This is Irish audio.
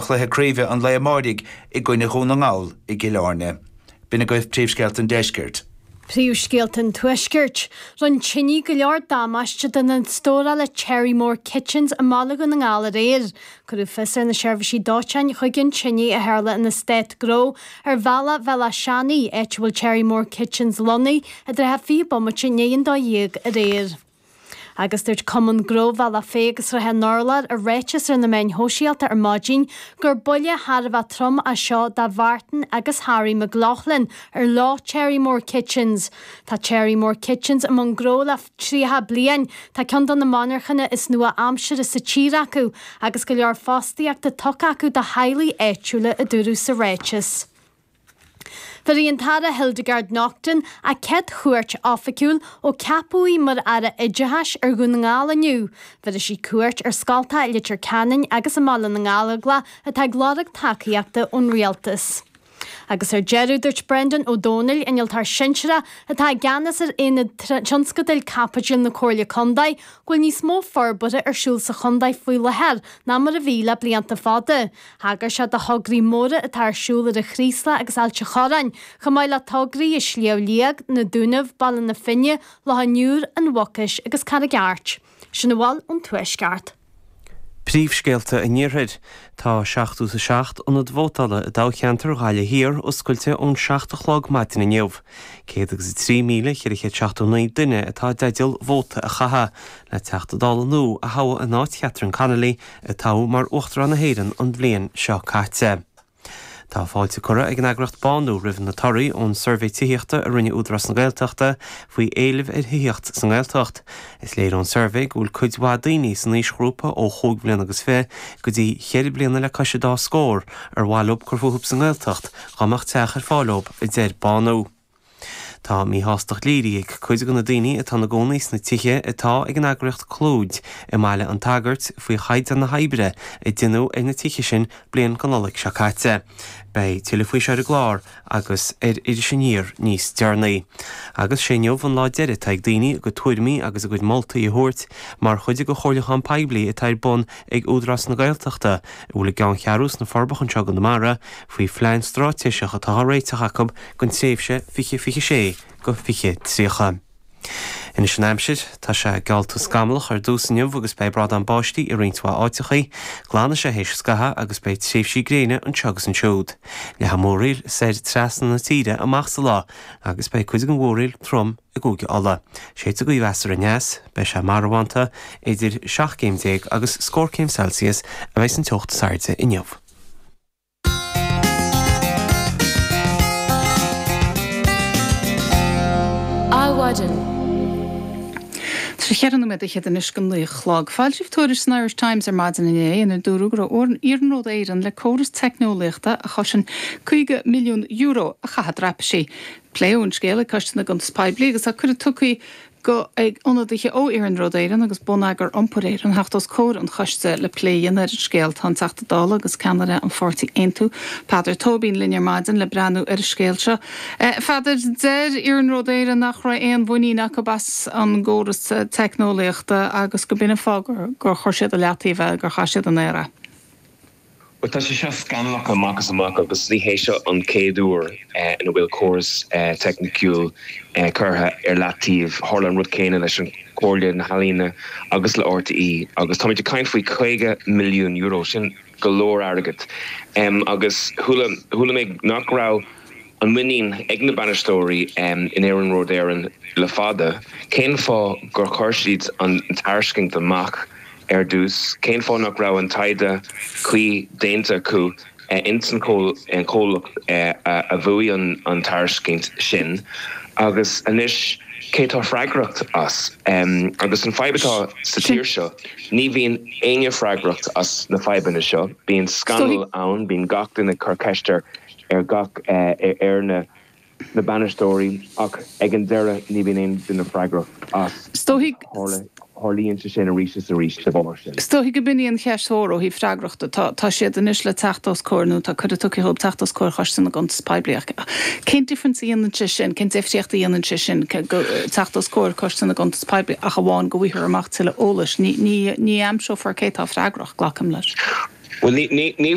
Cluiche Craoibhe an lae amáirigh i gcoinne Dhún na nGall i gCill Áirne. B'in agaibh Príomhscéalta an Deiscirt. Príomhscéalta an Tuaiscirt. Rinn tinidh go leor damáiste d'ionad stórála Cherrymore Kitchens i mBaile Dhún na nGall aréir. Cuireadh fios ar na seirbhísí dóiteáin chuig an tinidh a tharla in Eastát Gnó ar bhealach Bhéal Átha Seanaidh, áit a bhfuil Cherrymore Kitchens lonnaith, i dtrátha 20 bomaite i ndiaidh an dó dhéag aréir. Agus dúirt Cumann Gnó Bhealach Féich agus Shrath an Urláir i ráiteas ar na meáin shóisialta ar maidin gur buille thar a bheith trom é seo do Mhartin agus Harry McLaughlin ar leo Cherrymore Kitchens. Tá Cherrymore Kitchens i mbun gnó le 30 bliain, tá cionn de na monarchana is nua aimsire sa tír acu agus go leor fostaíochta tugtha acu do theaghlaigh áitiúla a dúradh sa ráiteas. Bhéarfaidh an tAire Hildegarde Naughton a céad chuairt oifigiúil ó ceapadh í mar Aire Oideachais ar Dhún na nGall inniu, bhéarfaidh sí cuairt ar scoltacha i Leitir Ceanainn agus i mBaile na nGallóglach atá ag lorg tacaíochta ón Rialtas. Agus ar deireadh dúirt Brendan Ó Domhnaill, Innealtóir Sinsearach atá i gceannas ar Aonad Tionscadail Caipitil na Comhairle Condae go bhfuil níos mó forbartha ar siúl sa chondae faoi láthair ná mar a bhí le blianta fada. Thagair sé do thograí móra atá ar siúl ar an Chraoslach agus Ailt an Chorráin, chomh maith le tograí i Sliabh Liag, Na Dúnaibh, Baile na Finne, Loch an Iúir, An Mhucais agus Carraig Airt. Sin a bhfuil ón Tuaisceart. Príomhscéalta an Iarthair Tá 77 ionad vótála i dtoghcheantar Ghaillimh Thiar oscailte ón 7 a chlog maidin inniu. 103,479 duine atá i dteideal vóta a chaitheamh le Teachta Dála nua a thoghadh in áit Chatherine Connolly, a toghadh mar Uachtarán na hÉireann an bhliain seo caite. Tá fáilte curtha ag an eagraíocht Bánú roimh na torthaí ón suirbhé tithíochta a rinne Údarás na Gaeltachta faoi éileamh ar thithíocht sa nGaeltacht. Is léir ón suirbhé go bhfuil cuid mhaith daoine san aoisghrúpa ó chúig bhliana agus fiche go dtí cheithre bliana le cois a dá scór ar mhaith leo cur fúthu sa nGaeltacht dá mbeadh teach ar fáil dóibh, a deir Bánú. Tá míshástacht léirithe ag cuid de na daoine atá ina gcónaí sna tithe atá ag an eagraíocht Clúid i mBaile an tSagairt faoi chaighdeán na hoibre a déanadh ar na tithe sin bliain go Nollaig seo caite. Beidh tuilleadh faoi seo ar an gclár agus ar Iris Aniar níos deireanaí. Agus sé inniu an lá deiridh atá ag daoine a gcuid tuairimí agus a gcuid moltaí a thabhairt mar chuid de chomhairliúchán poiblí atá ar bun ag Údarás na Gaeltachta a bhfuil a gceanncheathrú sna Forbacha anseo i gConamara faoi phlean stráitéiseach atá á réiteach acu don tréimhse 2026-2030. Anois an aimsir, tá sé geallta scamallach ar dtús inniu agus beidh brádán báistí i roinnt mhaith áiteachaí, glanfaidh sé théis scaithimh agus beidh tréimhsí gréine anseo agus ansiúd. Leathfaidh múraíl soir trasna na tíre amach sa lá agus beidh cuid den mhúraíl trom i gCúige Uladh. Séidfidh gaoth mheasartha aneas, beidh sé marbhánta, idir seacht gcéim déag agus scór céim Celsius a bheas an teocht is airde inniu. Adhmhaidin. Ceithre nóiméad fhichead anois go naoi a chlog. Foilsíodh tuairisc san Irish Times ar maidin inné inar dúradh go raibh ar Iarnród Éireann córas teicneolaíochta a chosain €50 milliún a chaitheamh i dtraipisí. Pléadh an scéal ag Coiste na gCuntas Poiblí agus tá cuireadh tugtha d'ionadaithe ó Iarnród Éireann agus Bonneagar Iompair Éireann theacht os comhair an choiste le plé a dhéanamh ar an scéal. Tá an Teachta Dála agus ceannaire an pháirtí Aontú, Peadar Tóibín, linn ar maidin le breathnú ar an scéal seo. Peadar, Deir Iarnród Éireann nach raibh aon mhuinín acu as an gcóras teicneolaíochta agus gurb in an fáth gur chuir siad i leataobh é, gur chaith siad in aer é. Bhuel tá sé seo scannalach amach is amach agus ní hé seo an chéad uair ina bhfuil córas teicniciúil curtha ar leataobh. Tharla an rud céanna leis an Chomhairle Ealaíon agus le RTÉ agus táimid ag caint faoi €50 milliún, sin go leor airgead agus chuala mé nach raibh. Aon mhuinín ag na bainisteoirí in Iarnród Éireann le fada. Cén fáth gur chuir siad an tairscint amach ar dtús? Cén fáth nach raibh an taighde cuí déanta acu ins an chomhlacht a bhuaigh an tairiscint sin? Agus anois cé tá freagracht as? Agus an fhadhb atá sa tír seo, ní bhíonn éinne freagracht as na fadhbanna seo. Bíonn scannal ann, bíonn gach duine ag cur ceist ar ar gach ar na bainisteoirí ach ag an deireadh ní bhíonn aon duine freagrach as agus tarlaíonn sé sin arís is arís de bharr sin. Is dóigh gurb in í an cheist mhór ó thaobh freagrachta. Tá siad anois le teacht os comhair, nó tá cuireadh tugtha dhóibh teacht os comhair Choiste na gCuntas Poiblí ach cén difference a dhéanann sé sin, cén deifríocht a dhéanann sé sin teacht os comhair Choiste na gCuntas Poiblí ach amháin go bhfaightear amach tuilleadh eolais. Ní aimseofar cé tá freagrach, glacaim leis. Bhuel ní